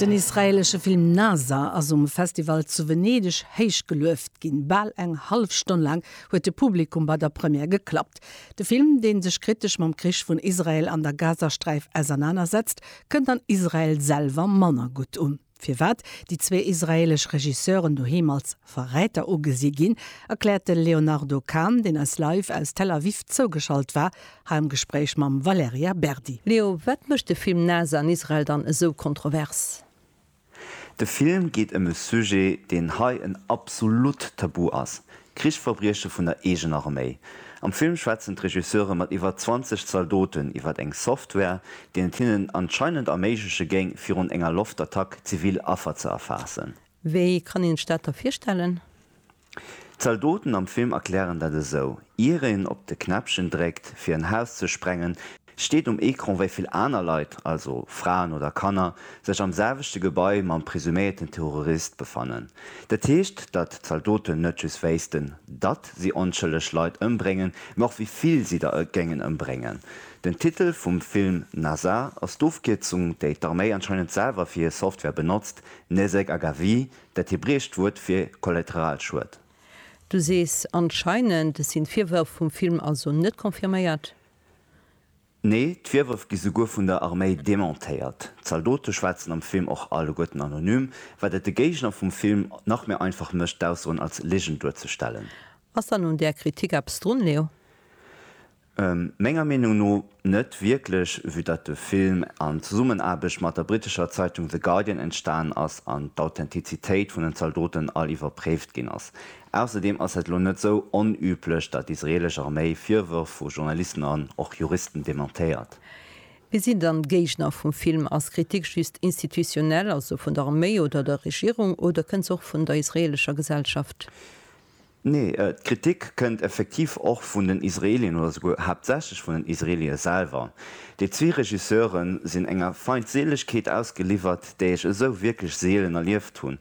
Den israeelesche Film Nazar ass um Festival zu Venedeg héich gelueft ginn. Bal eng hallef Stonn laang huet de Publikum bei der Première geklappt. De Film, dee sech kritesch mam Krich vun Israel an der Gazasträif ausernanersetzt, kënnt an Israel selwer manner gutt un. Firwat déi zwee israeelesch Regisseuren doheem als Verräter ugesi ginn, erkläert de Léonardo Kahn, deen eis live aus Tel Aviv zougeschalt war, hei am Gespréich mam Valerija Berdi. Leo, wat mécht de Film Nase an Israel dann esou kontrovers? De Film geet ëm e Sujet, deen hei en absolutt Tabu ass, Krichsverbrieche vun der eegener Arméi. Am Film schwätzen d'Regisseure mat iwwer 20 Zaldoten iwwer eng Software, deen et hinnen anscheinend erméigleche géing, virun enger Loftattack zivil Affer ze erfaassen. Wéi kann een sech dat da virstellen? D'Zaldoten am Film erklären dat esou, Ier een op de Knäppchen dréckt, fir en Haus ze sprengen, Steet um Ecran wéi vill aner Leit, also Fraen oder Kanner, sech am selwechte Gebai mam presuméierten Terrorist befannen. Dat heescht, datt d'Zaldoten net just wéissten, datt si onschëlleg Leit ëmbréngen, mä och wéi vill si der géingen ëmbréngen. Den Titel vum Film Nasa ass d'Ofkierzung, déi d'Arméi anscheinend selwer fir hir Software benotzt, Nezek Agavi, dat hebräescht Wuert fir Kollateralschued. Du sees anscheinend, sinn d'Virwërf vum Film also net confirméiert? Nee, d'Virwërf gi souguer vun der Arméi dementéiert. D'Zaldote schwätzen am Film och alleguerten anonym, wat et de Géigner vum Film nach méi einfach mécht, d'Aussoen als Ligen duerzestellen. Ass dann un där Kritik eppes drun, Leo? Menger Meenung no net wierklech, vue datt de Film an Zesummenaarbecht mat der brittescher Zeitung The Guardian entstanen ass an d'Authentizitéit vun den Zaldoten all iwwerpréift ginn ass. Ausserdeem ass et elo net esou onüblech, datt d'israelesch Arméi Virwërf vu Journalisten an och Juristen dementéiert. Wie sinn dann d'Géigner vum Film? Ass Kritik just institutionell, also vun der Arméi oder der Regierung, oder kënnt se och vun der israelescher Gesellschaft? Nee, d'Kritik kënnt effektiv och vun den Israelien, oder souguer haaptsächlech vun den Israelie selwer. Déi zwee Regisseure sinn enger Feindseelegkeet ausgeliwwert, déi ech esou wierklech seelen erlieft hunn.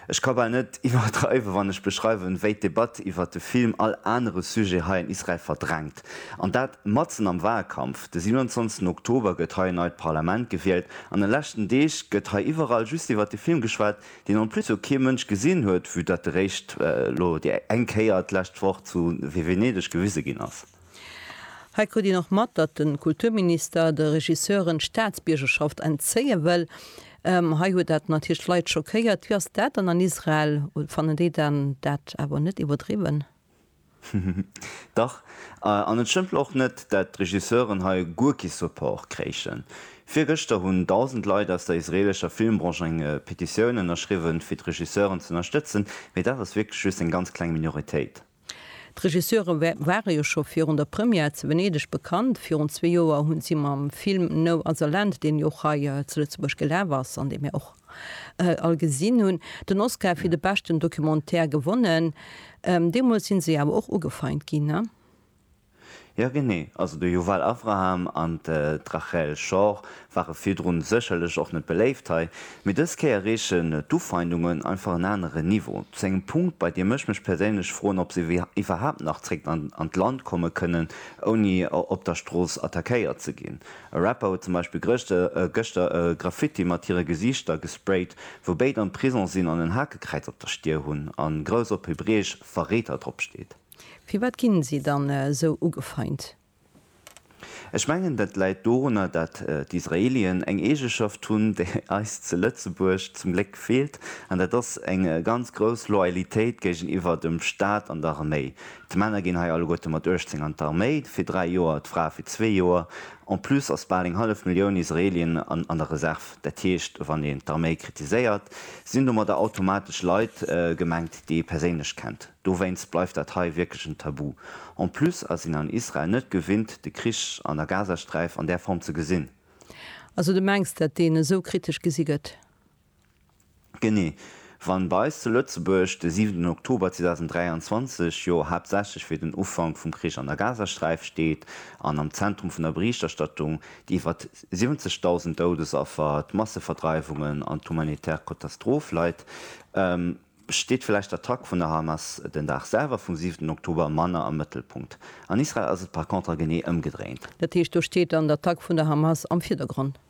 Ech ka bal net iwwerdreiwen, wann ech beschreiwen, wéi d'Debatt iwwert de Film all anere Sujet hei an Israel verdrängt. An dat matzen am Wahlkampf. De 27 Oktober gëtt hei en neit Parlament gewielt, an den leschten Deeg gëtt hei iwwerall just iwwert de Film geschwat, deen en plus jo kee Mënsch gesinn huet, vue datt e réischt elo déi eng Kéier d'lescht Woch zu Venedeg gewise ginn ass. Hei krut een och mat, datt de Kulturminister de Regisseuren d'Staatsbiergerschaft entzéie wëll. Hei huet dat natierlech d'Leit schockéiert. Wéi ass dat dann an Israel? Fannen déi dann dat awer net iwwerdriwwen? Dach, an et stëmmt och net, datt d'Regisseuren hei guer kee Support kréichen. Virgëschter hunn 1.000 Leit aus der israeelescher Filmbranche eng Petitioun ënnerschriwwen, fir d'Regisseuren z'ënnerstëtzen, mee dat ass wierklech just eng ganz kleng Minoritéit. D'Regisseure ware jo scho virun der Première zu Venedeg bekannt. Virun zwee Joer hu si mam Film No Other Land, deen jo och hei zu Lëtzebuerg gelaf ass an dee mir och all gesinn hunn, den Oscar fir de beschten Documentaire gewonnen. Deemools si se awer och ugefeint ginn. Jo genee, also de Yuval Avraham an d'Rachel Schor ware virdrun sécherlech och net beléift hei, mee dës Kéier reechen d'Ufeindungen einfach en anere Niveau, zu engem Punkt bei deem ech mech perséinlech froen ob se iwwerhaapt nach zréck an d'Land komme kënnen ouni op der Strooss attackéiert ze ginn. E Rapper huet zum Beispill gëschter e Graffiti mat hire Gesiichter gesprayt wou béid am Prison sinn an en Hakekräiz op der Stier hunn a grouss op Hebräesch Verräter drop steet. Firwat ginn si dann esou ugefeint? Ech mengen, dat läit dorunner, dat d'Israelien eng Eegeschaft hunn, déi eis zu Lëtzebuerg zum Gléck feelt, an dat ass eng ganz grouss Loyalitéit géigeniwwer dem Staat an der Arméi. D'Männer ginn hei alleguerte mat 18 an d'Arméi, fir dräi Joer, d'Frae fir zwee Joer. En plus ass bal eng hallef Millioun Israelien an der Reserv. Dat heescht, wann een d'Arméi kritiséiert, sinn domadder automatesch Leit gemengt, déi ee perséinlech kennt. Dowéinst bleift dat hei wierklech en Tabu. En plus ass een an Israel net gewinnt, de Krich an der Gazasträif an där Form ze gesinn. Also de mengs, dat deen esou kritesch gesi gëtt? Genee. Wann bei eis zu Lëtzebuerg de siwenten Oktober 2023 jo haaptsächlech fir den Ufank vum Krich an der Gazasträif steet an am Zentrum vun der Berichterstattung déi iwwert 70.000 Doudesaffer, d'Masseverdreiwungen an d'humanitär Kotastroph leit, Steet vläicht d'Attack vun der Hamas den Dag selwer vum siwenten Oktober manner am Mëttelpunkt? An Israel ass et par contre genee ëmgedréint. Dat heescht, do steet dann d'Attack vun der Hamas am Virdergrond?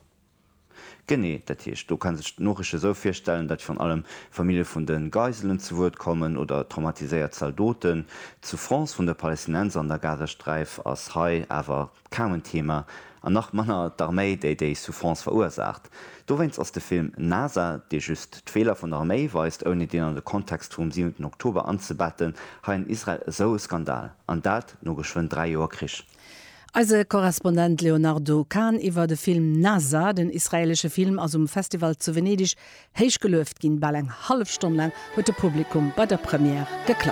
Genee. Dat heescht, do ka sech d'Noriicht esou virstellen, datt virun allem Famillje vun de Geiselen zu Wuert kommen oder traumatiséiert Zaldoten. D'Souffrance vun de Palästinenser an der Gazasträif ass hei awer Kaum en Thema, an nach manner d'Arméi déi déi Souffrance verursaacht. Dowéinst ass de Film NASA, dee just d'Feeler vun der Arméi weist ouni deen an de Kontext vum siwenten Oktober anzebetten, hei an Israel esou e Skandal, an dat no geschwënn 3 Joer Krich. Eise Korrespondent Léonardo Kahn iwwer de Film NASA. Den israelesche Film ass um Festival zu Venedig héich gelueft ginn. Bal eng hallef Stonn laang huet de Publikum bei der Première geklappt.